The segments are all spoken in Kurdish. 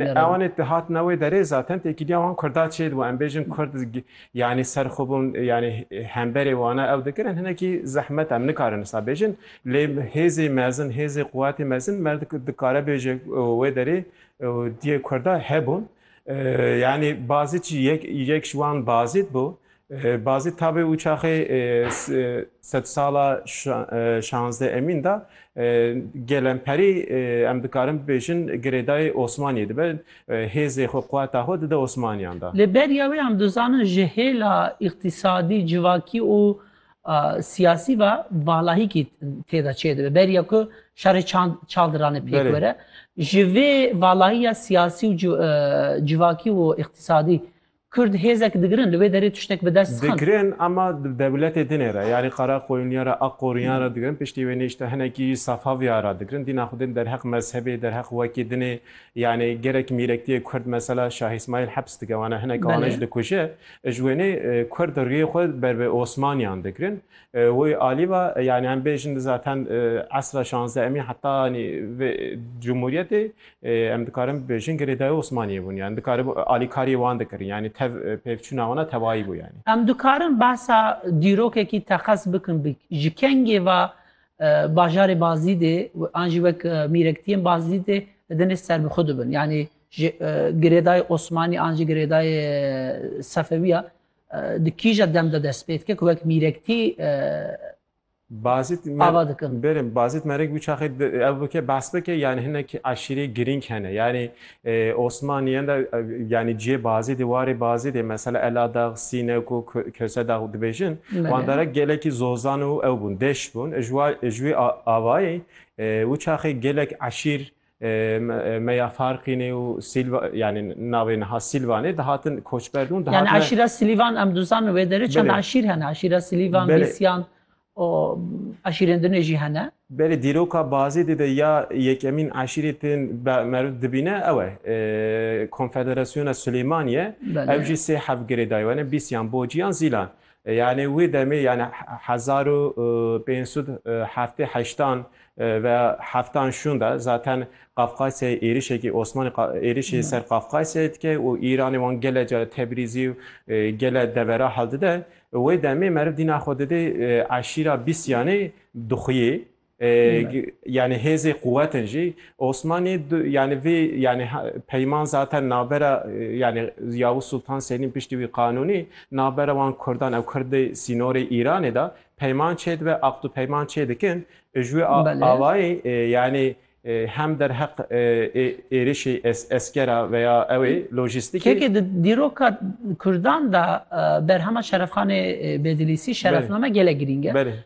Lê ewanê te hatine wê derê zaten têkiliya wan kurda çê dibû. Em bêjin kurd yanî ser xwe bûn yanî hemberê wana ew dikirin hinekî zehmet em nikarin wisa bêjin. Lê hêzê mezin, hêzê quwetê mezin me dikare bêje wê derê diyê kurda hebûn. Yanî bazî çi yek yek ji wan bazî dibû Bazî tabê û çaxê sedsala şanzde emîn de gelemperî em dikarin bibêjin girêdayê Osmaniyê dibe, hêzê xwe quweta xwe dide Osmaniyan de. Li beriya wê em dizanin ji hêla îqtîsadî, civakî û siyasî ve valahîkî tê de çêdibe. Beriya ku şerê çaldiranê pêk were ji vê valahiya siyasî û civakî û îqtîsadî Kurd hêzek digirin, li wê derê tiştek bi dest xin. Digirin ama di dewletê din ê re. Yanî Qaraxoyuniya re, Aqoriyan re digirin. Piştî wê nêşte hinekî Safaviya re digirin. Dîna xwe din derheq mezhebê, derheq wekî din ê. Yanî gerek mîrektiyê Kurd mesela Şah Îsmaîl heps dike wana hinek wan jî dikuje. Ji wênê Kurd riyê xwe ber bi Osmaniyan digirin. Wê alî ve yanî em bêjin zaten esra şanzdehemî heta yanî vê cumhuriyetê Em dikarin bibêjin girêdayî Osmaniyê bûn yanî dikaribû alîkariyê wan dikirin yanî tev pêvçûna wan a tevayî bû yanî. Em dikarin behsa dîrokekî teqez bikin bi ji kengê ve bajarê Bazîdê an jî wek mîrektiyên Bazîdê li dinê serbixwe dibin yanî ji girêdayê Osmanî an jî girêdayê Sefewî ya di kîja dem de dest pê dike ku wek mîrektî Bazit ava dikin. Berim Bazit Merek bu çaxê ev bike bahs bike yani hinek aşîrê girîng hene. Yani e, Osmaniyen de e, yani ciyê Bazitê warê Bazitê mesela Eladag, Sînek û Kösedag dibêjin. Wan dere gelekî zozan û ew bûn, deş bûn. Ji wê avayê e, û çaxê gelek aşîr Me ya Farqînê û Sîlva yanî navê niha Sîlvanê dihatin koçber bûn dihatin. Yani aşîra Sîlvan em dizanin wê derê çend aşîr hene aşîra Sîlvan Bîsyan û aşîrên din jî hene. Belê dîroka bazê dê de ya yekemîn aşîrê tên meriv dibîne ew e Konfederasyona Silêmaniye ew jî sê hevgirê daye wene Bîsyan, Bociyan, Zîlan. Yanî wî demê yanî hezar û pênc sed û heftê heştan ve heftan şûn de zaten Qafqasyayê êrişekî Osmanî êrişê ser Qafqasyayê dike û Îranê wan gele care Tebrizî û gele devera heldide. Wê demê meriv dîna xwe didê eşîra bîst yanî dixuyê. Yani hêzê quwetin jî Osmanî yani vî yani peyman zaten navbera yani Yavuz Sultan Selîm piştî wî qanûnî navbera wan Kurdan ew Kurd dê sînorê Îranê de peyman çêdibe aqd û peyman çêdikin ji wê awayî yani hem derheq êrişî eskera veya ew ê lojîstikê Kekê di dîroka Kurdan de berhema Şerefxanê Bedilîsî şerefname gelek girîng e.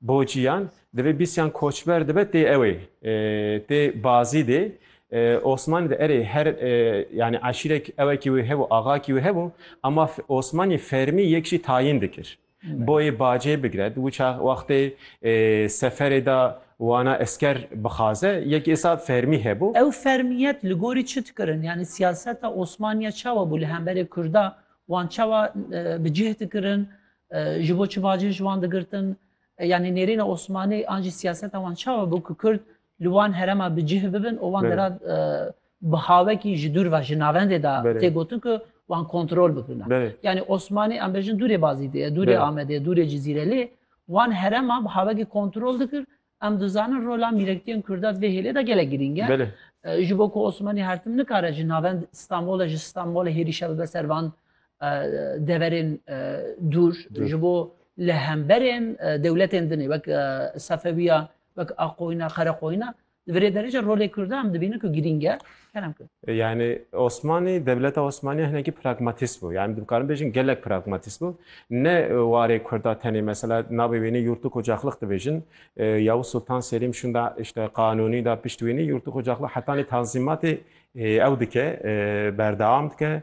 Bociyan divê bîsyan koçber dibe tê ewê tê bazî dê Osmanî de erê her yanî eşîrek ewekî wê hebû axakî wê hebû ema Osmanî fermî yek jî tayîn dikir. Boyê bacê bigire di wîça wextê seferê de wana esker bixaze yek êsa fermî hebû. Ew fermîyet li gorî çi dikirin yanî siyaseta Osmanî ya çawa bû li hemberê Kurda wan çawa bi cih dikirin Ji bo çi bacê ji wan digirtin? Yanî nêrîna Osmanî an jî siyaseta wan çawa bû ku Kurd li wan herema bi cih bibin û wan dera bi hawekî ji dûr ve ji navendê de tê gotin ku wan kontrol bikirina. Yanî Osmanî em bêjin dûrê Bazîdê ye, dûrê Amedê ye, dûrê Cizîre lê wan herema bi hawekî kontrol dikir Em dizanin rola mîrektiyên Kurda di vê hêlê de gelek girîng e. Belê. Ji bo ku Osmanî her tim nikare ji navend Stenbolê ji Stenbolê hêrîşe bibe ser van deverên dûr ji bo li hemberên dewletên din ê wek Sefewiya wek Aqoyina Qereqoyina di virê derece rolê Kurda em dibînin ku girîng e. Yani Osmanî, dewleta Osmanî hinekî pragmatîst bû. Yani dikarin bêjin gelek pragmatîst bû. Ne warê Kurda tenê mesela navê wênê yurtu kocaxlix dibêjin. Yavuz Sultan Selîm şunda işte qanûnî da pişt wênê yurtu kocaxlix hetanê tanzîmatê ew dike, berdewam dike.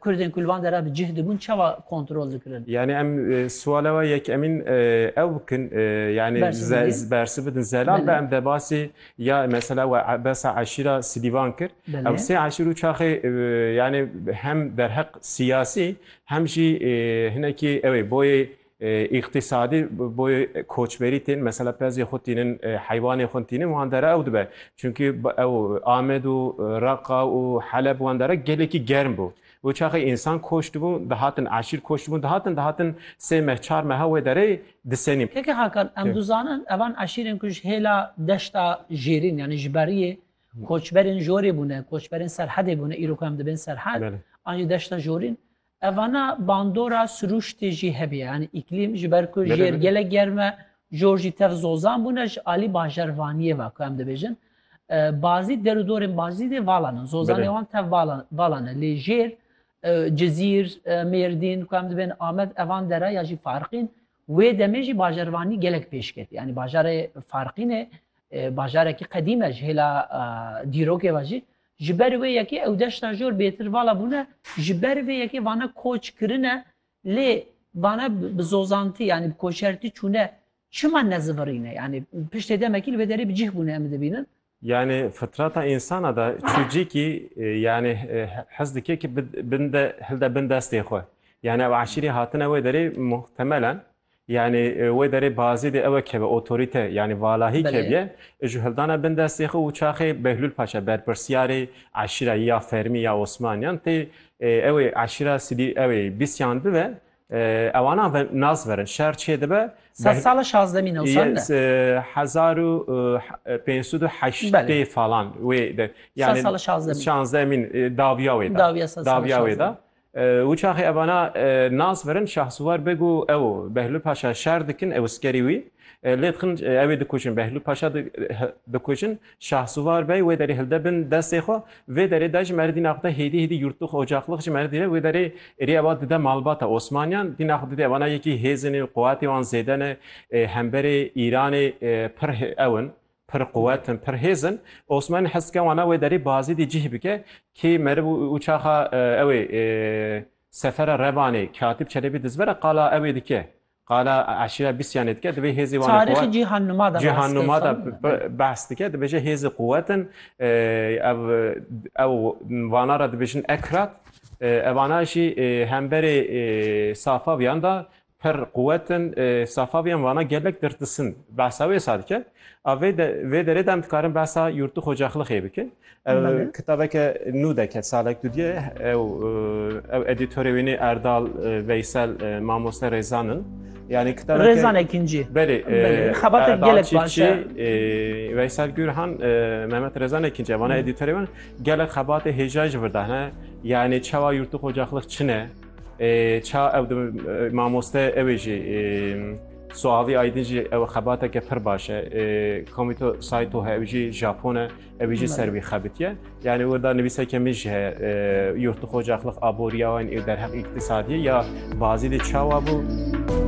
Kurdên ku li van dera bi cih dibûn çawa kontrol dikirin? Yanî em siwala we yekemîn ew bikin yanî bersi bidin zelal be em debasî ya mesela we besa eşîra Silîvan kir. Ew sê eşîr û çaxê yanî hem derheq siyasî hem jî hinekî ew ê boyê Îqtîsadî boyê koçberî tên mesela pezê xwe tînin, heywanê xwe tînin wan dere ew dibe. Çunkî ew Amed û Reqa û Heleb wan dere gelekî germ bû. Û çaxê însan koç dibû, dihatin eşîr koç dibûn, dihatin dihatin sê meh çar meha wê derê disenî. Keke Hakan, em dizanin evan eşîrên ku ji hêla deşta Jêrîn yanî ji beriyê koçberên jorê bûne, koçberên serhedê bûne, îro ku em dibên serhed an jî deşta jorîn Evana bandora sirûştê jî hebî yanî îklîm ji ber ku jêr gelek germ e, jor jî tev zozan bûne ji alî bajarvaniyê ve ku em dibêjin bazî der û dorên bazî dê valan in. Zozanê wan tev valan e lê jêr Cizîr, Mêrdîn ku em dibên Amed evan dera ya jî Farqîn wê demê jî bajarvanî gelek pêş ket. Yanî bajarê Farqînê bajarekî qedîm e ji hêla dîrokê ve jî Ji ber wê yekê ew deşta jor bêtir vala bûne, ji ber vê yekê vane koç kirine lê vane bi zozantî yanî bi koçertî çûne çima nezivirîne yanî piştê demekî li vê derê bi cih bûne em dibînin. Yanî fitrata însana de çûcîkî yanî hez dike ki binde hilde bin destê xwe. Yanî ew eşîrî hatine wê derê muhtemelen Yanî wê derê bazî dê ew e keve otorîte yanî valahî keviye ji hildana bin destê xwe û çaxê Behlûl Paşa berpirsyarê eşîra yî ya fermî ya Osmaniyan tê ew ê eşîra sidî ew ê bîsyan bibe ewana ve nas verin şer çê dibe Sed sala şazdemî newsan de. Hezar û pênc sed û heştê falan wê de. Sed sala şazdemî. Şazdemîn dawiya wê de. Dawiya sed sala şazdemî. Dawiya wê de. Û çaxê evana nas verin Şahsiwar Beg û ew Behlûl Paşa şer dikin, ew skerî wî lê dixin ew ê dikuşin. Behlûl Paşa dikuşin, Şahsiwar Bey wê derê hilde bin destê xwe. Vê derê de ji merdî naxwe de hêdî hêdî yurtlix, ocaqlix ji merdî re wê derê êrî ewa dide malbata Osmaniyan. Dî naxwe didê evana yekî hêzin in, quwetê wan zêde ne, hemberê Îranê pir ew in. Pir quwet in, pir hêz in. Osmanî hest dike wana wê derî bi Azîdî cih bike. Kî merib û çaxa ew ê sefera Revanê Katîb Çelebî dizbere qala ew ê dike. Qala eşîra Bîsyanê dike. Divê hêzê wan ê quwet. Tarîxê Cîhannuma de Cîhannuma de behs dike. Dibêje hêzê quwet in. Ev ew vana re dibêjin Ekrat. Evana jî hemberê Safawiyan de Pir quwet in. Safaviyan vana gelek dirtisin in. Behsa wê sa dikin. A vê de vê derê de em dikarin behsa Yûrtu Xocaxlixê bikin. Ew kitabeke nû de ket salek du diye. Ew ew edîtorê wê nê Erdal Veysel Mamoste Rêzan in. Yanî kitabeke Rêzan Ekîncî. Belê. Belê. Xebateke Erdal gelek baş Çîfçî, e. e, Veysel Gurhan, e, Mehmet Rêzan Ekîncî vana edîtorê wan gelek xebatê hêja jî vir dane. Yanî çawa Yûrtu Xocaxlix çi ne? Ça ew mamoste ew ê jî Suavi Aydin jî ew xebateke pir baş e. Komîto Sayto he ew jî Japon e, ew jî ser wî xebitiye. Yani wirda nivîseke min jî heye yurt dixo caxlix aboriya wan ê derheq îktisadiyê ya bazî dê çawa bû.